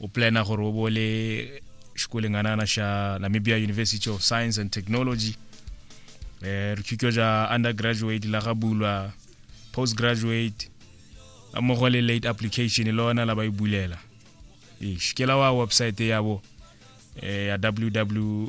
o plana gore o bo le xikoleng anana xa namibia university of science and technology eh, rithutwa ja undergraduate la ga bulwa postgraduate la mmogo le late application le ona la ba e bulela ish ke la wa website yabo eh, ya ww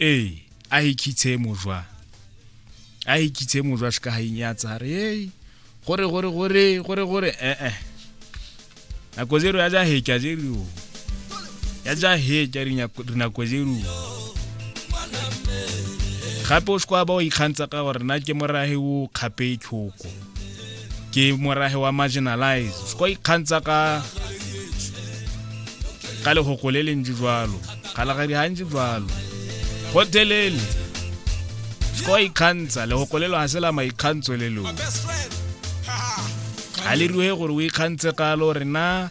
ee a ikitshe mojwa a ikitshe mojwa se ka ga inyatsa re ee gore gore gore gore gore ee eh, eh. nako zero ya ja hekya zero ya ja hekya dinako zero gape o se kwa ba o ikgantsha ka gore na ke morahe o kgape tlhoko ke morage wa marginalize se kwa ikgantsha ka ka legoko le lentsi jalo kgalagadi ga ntsi jalo gotelele se kwa ikgantsha legoko le lo ga se la maikgantsho le lone ga le rue gore o ikgantshe kalo rena